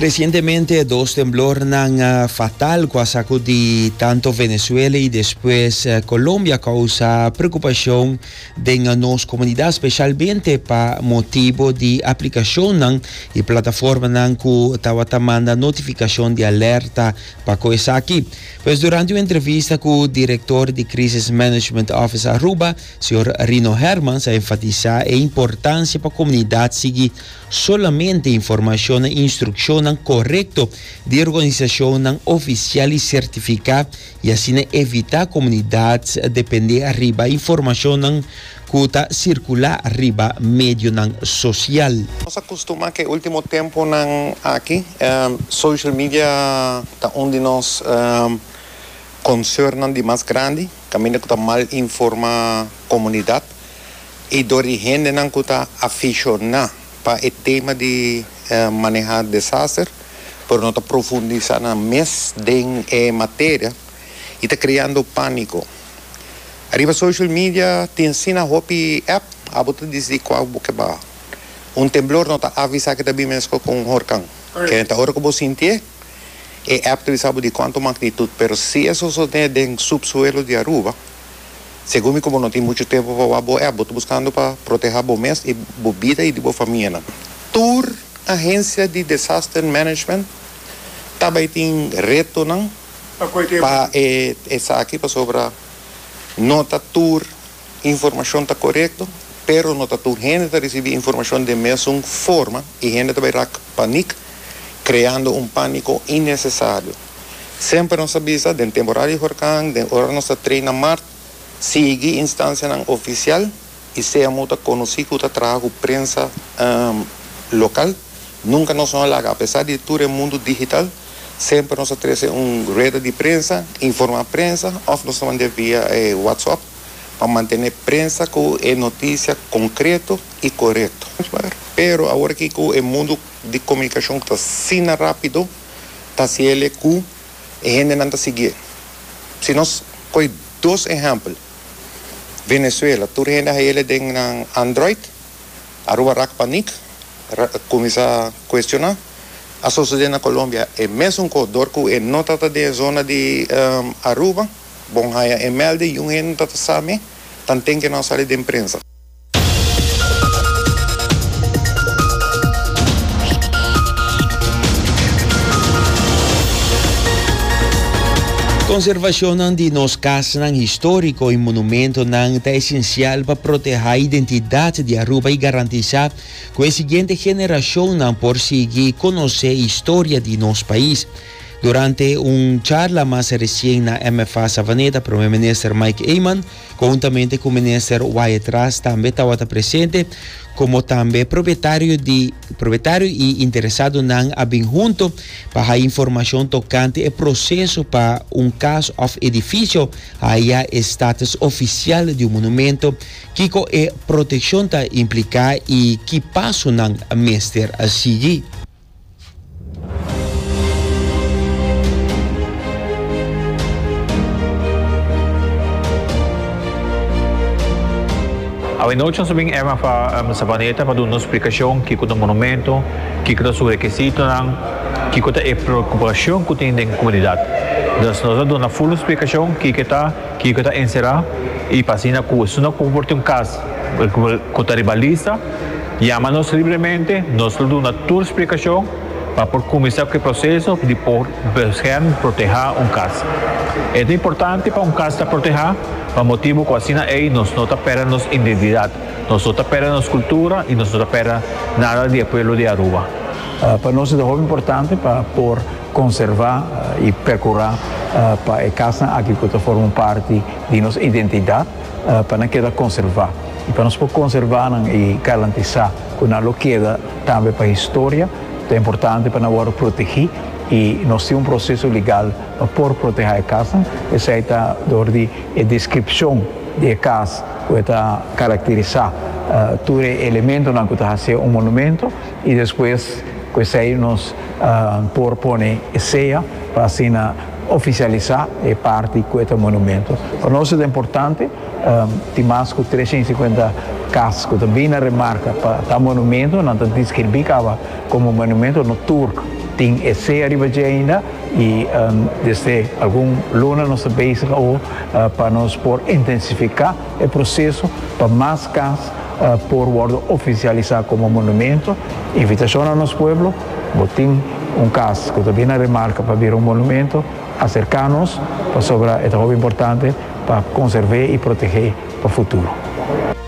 Recientemente dos temblornan eh, fatal cu a sacudi tanto Venezuela y despues eh, Colombia causa preocupacion den eh, nos comunidad, specialmente pa motibo di aplicacionnan y plataformanan cu tabata manda notificacion di alerta pa cu esaki. Pues durante un entrevista cu director di Crisis Management Office Aruba, Señor Rino Hermans a enfatisa e importancia pa comunidad sigui solamente informacion na instruccionnan corecto di organisacionnan oficial y certifica y asina evita comunidad depende riba informacionnan cu ta circula riba medionan social. Nos a custuma cu e ultimo temponan aki social media ta un di nos concernnan di mas grandi. Caminda cu ta mal informa comunidad y door di hendenan cu ta aficiona pa e tema di maneha desaster pero no ta profundisa nan mes den e materia y ta creando panico. Ariba social media tin asina hopi app, abo ta dicidi cua bo ke baha. Un temblor no ta avisa ke ta bin mesco cu un horcan. Kende ta ora cu bo sintié? E app ta bisa bo di cuanto magnitud, pero si e sosode den subsuelo di Aruba, segun mi cu bo no tin mucho tempo pa wak bo app, bo ta buscando pa proteha bo mes y bo bida y di bo famianan. Tur agencia di desaster management ta bay tin retonan pa esaki pasobra no ta tur. Informashon ta korekto, pero no ta tur hende ta risibí informashon den mesun forma i hende ta bai rak panik, kreando un pániko innesesario. Semper nos a bisa, den temporada di horkan, den ora nos ta treina mar, sigui instansianan ofisial i sea muta ta konosí ku ta traha ku prensa lokal. Nunka nos no a laga, apesar di tur e mundu digital. Semper nos ta trece un rueda di prensa, informa prensa of nos ta mandia via e WhatsApp pa mantene prensa cu e noticia concreto y corecto. Pero awor aki cu e mundo di comunicacion ta asina rapido ta haci el'e cu e hendenan ta sigui'e. Si nos coge dos ehempel, Venezuela tur hende a hael'e den nan Android Aruba rak panik, kuminsá kuestioná. A sosodé na Colombia e mesun kos dor ku e no ta ta den e zona di Aruba. Bon haña e mèlde i un hende no ta ta sa me, tanten ke no sali den prensa. Konservashonnan di nos kas. Plazasnan históriko i monumentonan ta esensial pa protehá identidat di Aruba i garantisá ku e siguiente generashonnan por sigui konosé historia di nos pais. Durante un charla mas resien na MFA Savaneta, Prome Minister Mike Eman, kountamente ku Minister Wyatt Ras tambe tabata presente, komo tambe propietario di. Propietario y interesadonan a bin hunto pa haya informacion tocante e proceso pa un cas of edificio haya e status oficial di un monumento, kico e proteccion ta implica y ki pasonan mester sigui. Awenochi nos a bin Emma fa Savaneta pa duna un splikashon kiko ta monumento, kiko ta su rekesitonan, kiko ta e preokupashon ku tin den komunidat. Nos nos a duna ful un splikashon kiko ta kiko ta enserá i pa asina ku esun a kompor tin un kas ku ta riba lista. Yama nos libremente, nos lo duna tur splikashon pa por kuminsá ku e proseso di por bescherm, protehá, un kas. E ta importante pa un kas ta protehá pa motibu ku asina ei nos no ta pèrdè nos indentidat, nos no ta pèrdè nos kultura i nos no ta pèrdè nada di e pueblo di Aruba. Pa nos e ta hopi importante pa por konservá i perkurá pa e kasnan aki ku ta forma un parti di nos identidat, pa nan keda konservá i pa nos por konservá nan i garantisá ku nan lo keda tambe pa historia ta importante pa nan wòrdu protegí i nos tin un proseso legal pa por protehá e kasnan esei ta dor di e deskripshon di e kas ku e ta karakterisá tur e elementonan ku ta hasié un monumentu i despues ku esei nos por pone e sea pa asina. oficialisa e parti cu e ta monumento. Pa nos e ta importante, tin mas cu tres ciento y cincuenta cas cu ta bini na remarca pa ta monumento, nan ta describi caba como monumento, nos Turk tin e sea riba dje ainda y desde algun luna nos ta bezig awo pa nos por intensifica. E proseso pa mas cas por wordo oficialisa como monumento. Invitacion na nos pueblo, bo tin un cas cu ta bin na remarca pa bira un monumento, acerca nos pasobra e ta hopi importante pa conserve y protege pa futuro.